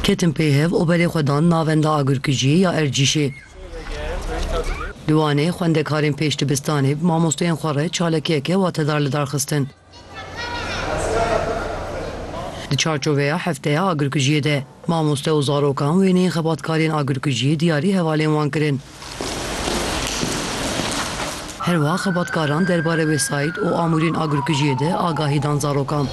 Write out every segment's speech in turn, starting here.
Ketin pêhev û berê xwe dan navenda agirkujiyê ya Ercîşê. Di Wanê xwendekarên pêş dibistanê bi mamostoyên xwe re çalakiyeke watedar li dar xistin. Di çarçoveya Hefteya Agirkujiyê de, mamoste û zarokan wêneyên xebatkariyên agirkujiyê diyarî hevalên wan kirin. Her wiha xebatkaran derbarê wesayît û amûrên agirkujiyê de agahî dan zarokan.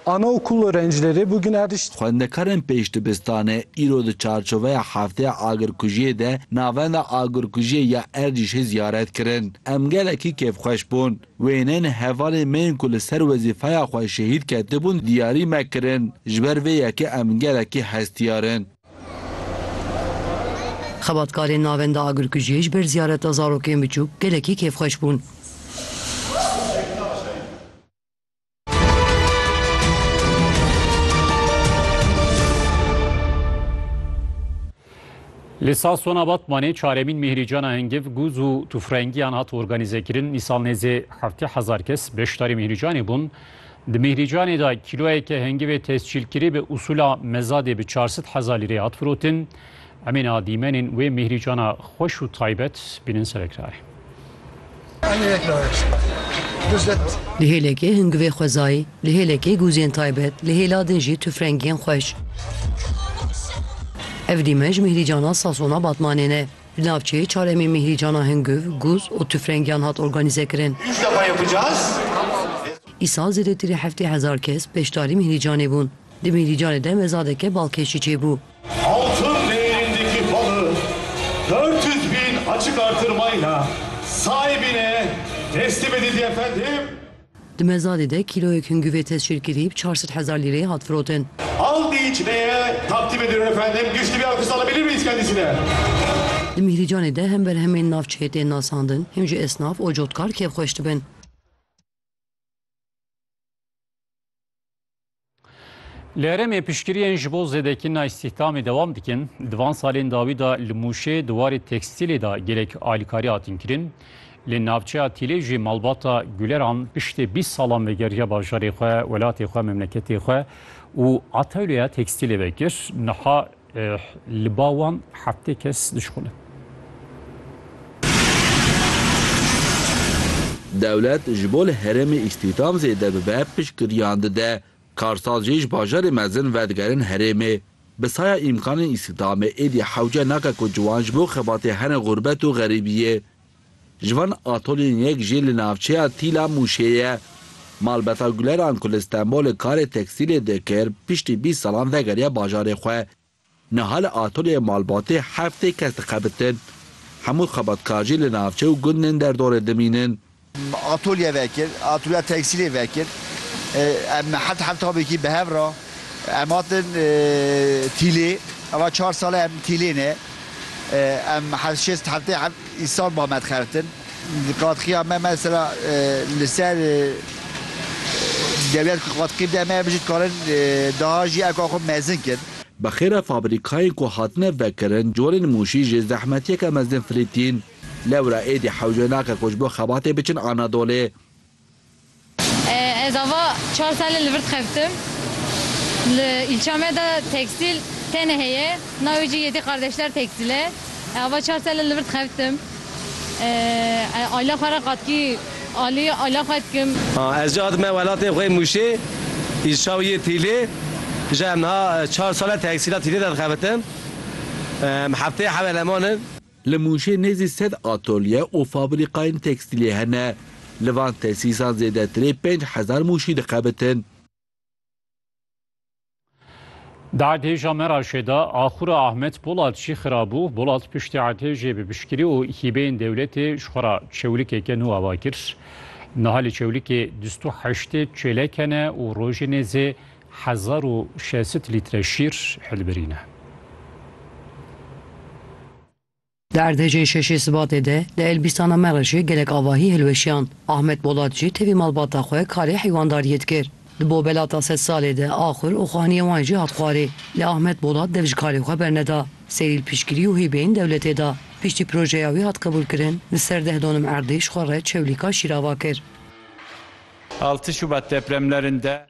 Ana okul orencileri bugün erişt. Xwendekarên pêş dibistanê îro di çarçoveya Hefteya Agirkujiyê de Navenda Agirkujiyê ya Erdîşê ziyaret kirin. Em gelekî kêfxweş bûn. Wêneyên hevalên me yên ku li ser wezîfeya xwe şehîd ketibûn diyarî me kirin. Ji ber vê yekê em gelekî hestiyar in. Xebatkarên navenda agirkujiyê ji ber ziyareta zarokên biçûk gelekî kêfxweş bûn. Li Sasona Batmanê çaremîn Mîhrîcana Hingiv gûz û tûfrengiyan hat organîzekirin. Îsal nêzê heftê hezar kes beşdarî Mîhrîcanê bûn. Di Mîhrîcanê de kîloyeke hengivê tescîlkirî bi usûla mezadê bi çar sed hezar lîrê hat firotin. Emên a dîmenên wê Mîhrîcana xweş û taybet bînin ser ekranê. Li hêlekê hingivê xwezayî, li hêlekê gûzên taybet, li hêla din jî tufrengiyên xweş. Ev dîmen ji Mîhrîcana Sasona Batmanê ne. Di navçeyê çar emê Mîhrîcana Hingûv, Gûz û tûfrengiyan hat organîzekirin. Îsal zêdetirî heftê hezar kes beşdarî Mîhrîcanê bûn. Di Mîhrîcanê de mezadeke balkêşî çêbû. Di Mezadê de kîloyek hingûvê tescîlkirî bi çar sed hezar lîreyê hat firotin. Altı içmeye takdim ediyorum efendim. Güçlü bir alkış alabilir miyiz kendisine? Di Mîhrîcanê de hem berhemên navçeyê tên nasandin hem jî esnaf û cotkar kêfxweş dibin. Li herêmê piştgiriyên ji bo zêdekirina îstîhdamê dewam dikin. Di van salên dawî de li Mûşê di warê tekstîlê de gelek alîkarî hatin kirin. Li navçeya Tîlê jî malbata Guleran piştê bîst salan vegeriya bajarê xwe, welatê xwe, memleketê xwe û atewleya tekstîlê vekir. Niha Li ba wan heftê kes dişkolin. Dewlet ji bo li herêmê îstîhdam zêde bibe piştgiriyan dide. Karsaz jî ji bajarê mezin vedigerin herêmê. Bi saya îmkanên îstîhdamê êdî hewce nake ku ciwan ji bo xebatê herin xûrbet û xerîbiyê. Ji van atolên yek jî li navçeya Tîla Mûşê ye. Malbata Guleran ku li Stenbolê karê tekstîlê dikir, piştî bîst salan vegeriya bajarê xwe. Niha li atolya malbatê heftê kes dixebitin. Hemû xebatkar jî li navçe û gundên derdorê dimînin. Atolye vekir, atolya tekstîlê vekir. Em heft heftabekî bi hev re em hatin Tîlê. Ava çar sal e em Tîlê ne. Em heft şêst heftê heft îsal ba me dixebtin. Di qadxiya me mesela li ser dewlet ku qadixî bide me bijî dikarin daha jî eka xwe mezin kin. Bi xêra fabrîkayên ku hatine vekirin corên Mûşî jê zehmetiyeke mezin firî tîn. Lewra êdî hewce nake ku ji bo xebatê biçin Anadolê. Ez ava çar sale li vir dixebitim. Li îlça me de tekstîl tenê heye, navê jî Yedî Kardeşler Tekstil e. Ez ava çar sale li vir dixebitim. Ez aîla xwe re qatkî alî aîla xwe dikim. Ez jî hatime welatê xwe yê Mûşê, îlça wî yê Tîlê. Ji em niha çar sale teksîla Tîlê de dixebitim. Em hefteyê hev eleman in. Li Mûşê nêzî sed atolye û fabrîkayên tekstîlê hene. Li van tesîsan zêdetirê pênc hezar mûşî dixebitin. Di erdhêja Meraşê de axura Ahmet Polat jî xirabû. Polat piştî erdhêjê bi piştgirî û hîbeyên dewletê ji xwe re çewlikeke nû ava kir. Niha li çewlikê dûst û heştê çêlek hene û rojê nêzê Hezar û şesit lître şîr hilbirîne. Di erdhejên şeşê Sibatê de li Elbîstana me re jî gelek avahî hilweşiyan. Ahmet Bolat jî tevî malbata xwe karê heywandariyê dikir. Di Bobelata Sed Salê de axur û xaniyê wan jî hat xwarê. Lê Ahmet Bolat dev ji karê xwe berneda. Serîl piştgirî û hîbeyên dewletê da. Piştî projeya wî hat qebûlkirin, li ser deh donim erdê ji xwe re çewlîka şîr ava kir. Altı Şubat depremlerinde